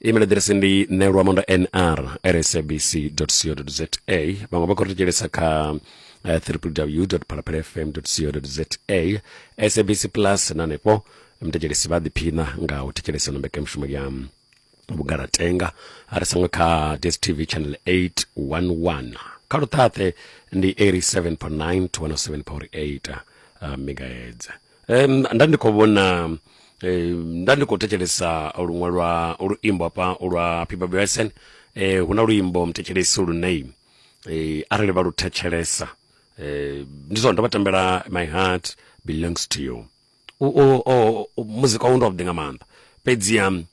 email address ndi nelwamondo nr rsabc co za vhaṅwe vha khou ri thetshelesa kha uh, www phalaphala fm co za sabc plus na hanefho mthetshelesi vha ḓiphina nga u thetshelesa ino mbekanyamushumo ya vhugalatenga a ri sango kha dstv channel 811 kha luṱhaṱhe ndi 87.9 to 107.8 uh, megahertz um, nda ndi khou vhona um, nda ndi khou thetshelesa luṅwe lwa luimbo hafha lwa pipa bsen eh, hu na luimbo mthetshelesi lune eh, arali vha lu thetshelesa eh, ndi zwone ndo vha tambela my heart belongs to you U- u- u- u- muzika wawu ndi wavhuḓi nga maanḓa fhedzi um,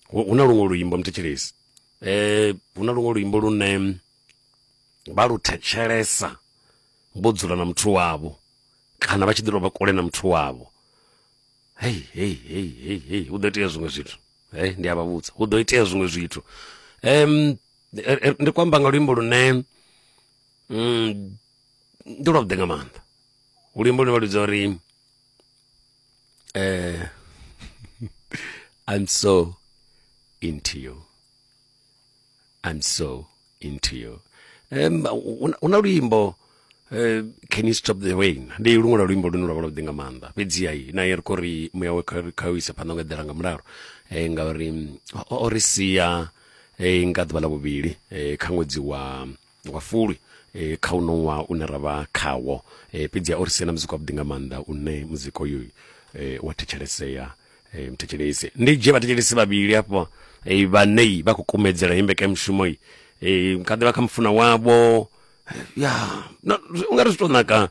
hu hu na luṅwe luimbo mthetshelesi eh, hu na luṅwe luimbo lune vha lu thetshelesa vho dzula na muthu wavho kana vha tshi ḓi tou vha kule na muthu wavho hei hei hei hei hei hu ḓo itea zwiṅwe zwithu hei ndi a vha vhudza hu ḓo itea zwiṅwe zwithu um ndi khou amba nga luimbo lune mm, ndi lwavhuḓi nga maanḓa luimbo lune vha ludza uri eh, i'm so into you I'm so into you um, hu na luimbo eh, can you stop the rain ndi luṅwe lwa luimbo lune lwa vha lwa vhuḓi nga maanḓa fhedziha i na ye ri khou ri muya we kha u isa phanḓa nga eḓela nga mulalo um ngauri o ri sia eh, nga ḓuvha ḽa vhuvhili kha ṅwedzi wa wa fulwi e, kha uno ṅwaha une ra vha khawo e, fhedzi a o ri siela muzika wavhuḓi nga maanḓa une muzika uyu e, wa thetshelesea e, mthetshelesi ndi dzhie vhathetshelesi vhavhili afho e, vhanei vha khou kumedzela imbeka mushumo i e, kha ḓivha kha mufuna wavho ya no, zwi- u nga ri zwi tou naka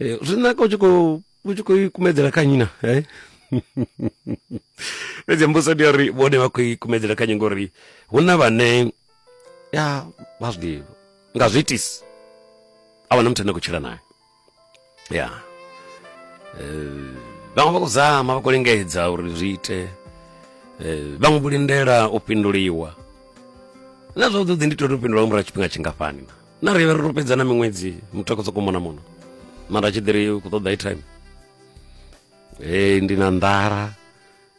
e, zwi naka u tshi khou u tshi khou i kumedzela kha nyina eh? fhedzi mbuso ndi ya uri vhone vha khou i kumedzela kha nyingo uri hu na vhane ya vha zwi nga zwi itisi a wana muthu ane khou tshila naye ya eh, vhaṅwe vha khou zama vha khou lingedza uri zwi ite eh, vhaṅwe vho lindela u fhinduliwa na zwavhuḓi ndi tori u fhindula nga murahu tshifhinga tshingafhani na na ri vha ri ro fhedza na miṅwedzi muthu a khou sokou mona muno mara tshi ḓiri u khou ṱoḓa i time ee ndi na nḓala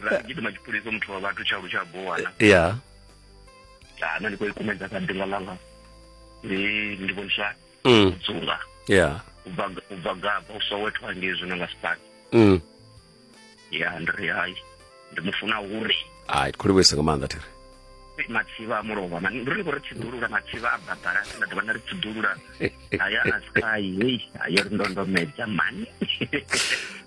ra gidima tshipulisa muthu wa vhathu tshalu tsha bowana ya kana ndi khou ikumedza kha ḓinga ḽanga ndi vhoniswa mm. u dzunga ya u bva gaba u sowetho hangei zwino nga sipaki mm. ya ndi ri hai ndi mu funa uri ai khou livhuisa nga maanḓa thiri matsivha a mulovha mani ndi ri khou ri tsiḓulula matsivha a badala sina ḓuvha na ri tsiḓulula aya a sky hei ayo ri ndondomedza mani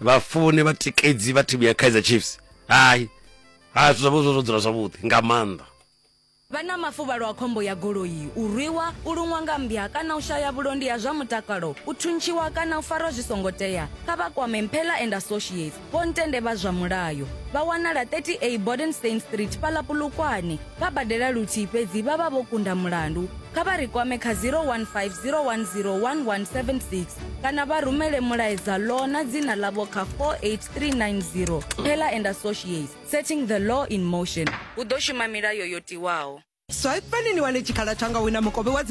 vhafuni vhatikedzi vha thimu ya kaizer chiefs hai hai zwithu zwavho zwo dzula zwavhuḓi nga maanḓa vha na mafuvhalo a khombo ya goloi u rwiwa u luṅwa nga mmbya kana u shaya vhulondi ha zwa mutakalo u thuntshiwa kana u farwa zwi songo tea kha vha kwame mphela and associates vho ntende vha zwa mulayo vha wanala 30a bodenstein street fhaḽa pulukwane vha badela luthihi fhedzi vha vha vho kunda mulandu, kha vha ri kwame kha 015 010 1176 kana vha rumele mulaedza Law na dzina ḽavho kha 48390. Pheller and Associates, Setting the Law in Motion. Hu ḓo shuma milayo yo tiwaho. Swaipani ni wane tshikhala tsha nga wina mukovhe wa dzi.